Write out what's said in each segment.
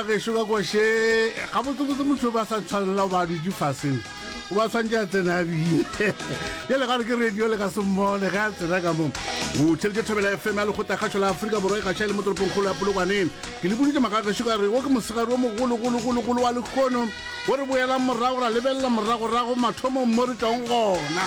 Ba gešo ba kwashe gabotsebotse motho ba sa tshwanela ba dutse faseng o ba tshwantse a tsena a bine jale gare ke radio le ka se mmone ge a tsena ka moo o theletše thobela fm ya lekgotla kgašo la aforika borwa e gaša e le mo toropong kgolo ya polokwaneng ke le boditse makagešo ka re wo ke mosegare wo mogologologologolo wa lekgono o re boelang morago ra lebelela moragorago mathomong mo re tong gona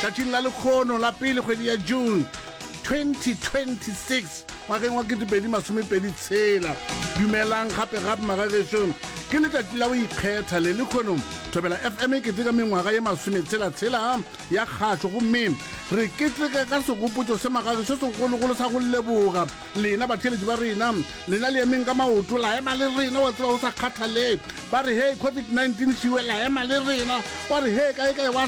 tšatšing la lekgono la pele kgwedi ya june 2026 ngwageng wa 2026. Dumelang gape gape magagešo. Ke letšatši la go ikgetha le lekhono. Thobela FM e keteka mengwaga ye masometshela-tshela ya kgašo gomme re keteka ka segopotšo se magagešo segologolo sa go leboga lena batheeletši ba rena. Lena le emeng ka maoto la ema le rena wa tseba go sa kgathalee ba re hei COVID-19 šiwe la ema le rena wa re hei kae kae wa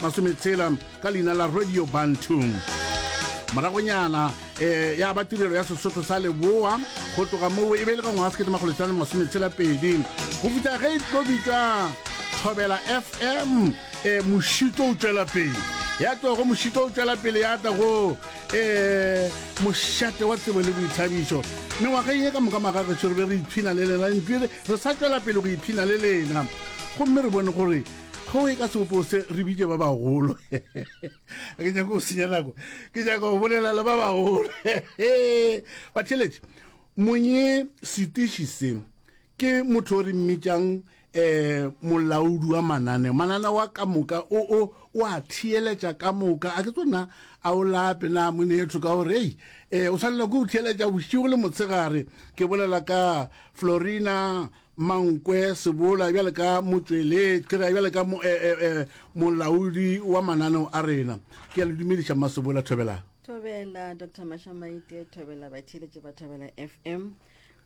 masometshela ka leina la radio bantu moragonyana um ya ba tirelo ya sesotho sa leboa go tloga moo e be e le ka ngwaga sekete makgolo tlano masometshela pedi go fitha ge e tlo bitšwa thobela fm um eh, mošito o tšwela pele ya tlogo mošito o tšwela pele ya tla go um eh, mošate wa tsebo le boithabišo mengwageng e ka moka magagešo re be re iphina le lena ntwi re sa tšwela pele go iphina le lena gomme re bone gore Go e ka se opose re bitše ba bagolo. Ke nyaka go senya nako. Ke nyaka go bolela le ba bagolo. Batheletše, monye setiši se ke motho o re mmitšang eh molaodi wa mananeo manana wa ka moka o o o a theeletša ka moka a ke tsona a o lape na monetho ka gore ei eh o swanela ke go theeletša bošigo le motshegare ke bolela ka florina Mankwe, Sebola bjale ka motšweletši, ke re bjale ka mo, eh, eh, eh, molaodi wa mananeo a rena. Ke a le dumediša Mma Sebola Thobela. thobela dr mashamaite thobela batheeletše ba thobela fm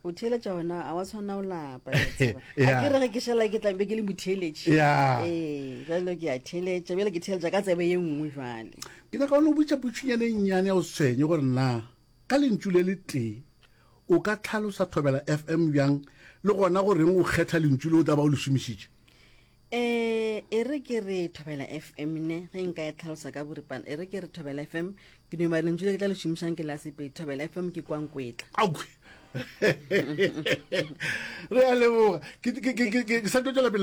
o theeletša ona a wa tshwana o lapa ke a tseba. Yeah. a ke re ge ke šala ke tlambe ke le motheeletše Yeah. ee jalo ke a theeletša bjale ke theeletša ka tsebe ye nngwe jale Ke nyaka o no botša potšonyane e nnyane ya o tshwenye gore na Ka lentšu le le tee, o ka tlhalosa Thobela FM bjang le gona go reng o kgetha lentšu le o tla ba o le šomišitše? Eh, e re ke re Thobela FM ne, ge nka e tlhalosa ka boripana, e re ke re Thobela FM, ke duma lentšu le ke tla le šomišang ke la Sepedi. Thobela FM ke kwa Nkwetla. Aowi! Re a leboga. Ke, ke, ke, ke, ke sa tlo tšwela pele.